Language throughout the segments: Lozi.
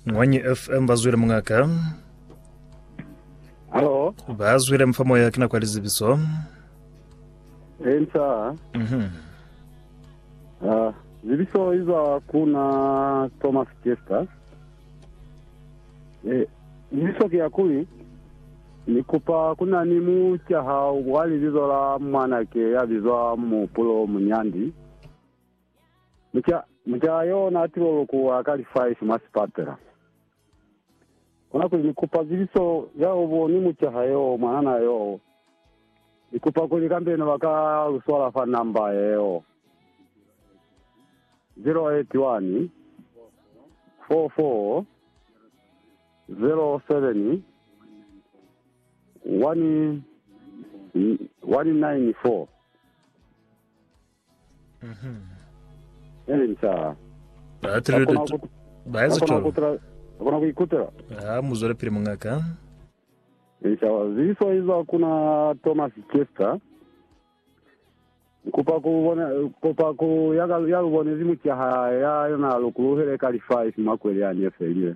Mwanyi FM bazwile mungaka. Halo, Bazwile mfa moya kina kwa lizibiso. ensa Mhm. ah, zibiso izwa kuna Thomas Chester. Eh, zibiso ke ya kuli ni kupa kuna ni mu caha wa libizo la mwanake ya bizwa Mupulo Munyandi. Mucaa yoo na atile ulukuwa ka li five mwa sipatela. Kona kuli, Ni kupa zibiso ya ubo ni mucaa yoo, mwanana yoo. Ni kupa kuli kambe ne ba ka lu swala fa namba yeo, 081 44 07 194. Inca. Ba Ka tuli kona ku, ba ka eza kona ku cwalo. tula, ka kona ku ikutela. Ha mu zwela pili mungaka. Inca, zibiso iza ku na Thomas Chester. Nkupa ku bona, kopa ku ya ka, ya lu bonezi mucaha ya yona lu kuluhele ka lifa ifi makweli a ni efelile.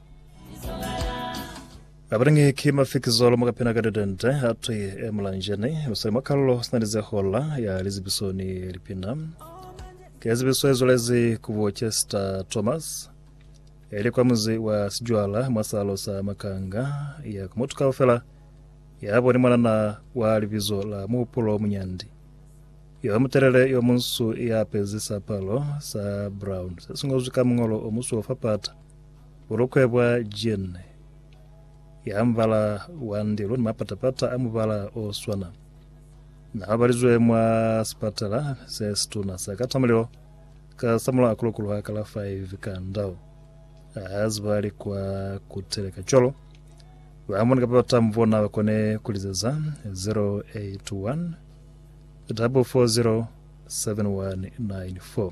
Abalingi ki mafikizolo mu kapena ka ditente atwi e mulanjeni usali mwa kalulo sina lize hola ya lizibiso ni lipina. Ke zibiso e zwalezi ku bo Chester Thomas eli kwa muzi wa Sijwala mwa salo sa Makanga ya ku mutu kaufela ya boni mwanana wa libizo la Muhupulo Munyandi yo mutelele yo munsu ya apezi sapalo sa brown se singozwi ka mungolo o musuo fa pata Bulukwe bwa jean ya mubala wa ndilo ni mapata-pata a mubala o swana na babalizwe mwa sipatala se situna sa Katamulilo ka Samulo a kulukuluha ka la 5 ka ndau. A ziba alikwa kuteleka cwalo. Ba mone kapa batambu bona bakone kulizeza 081 440 7194.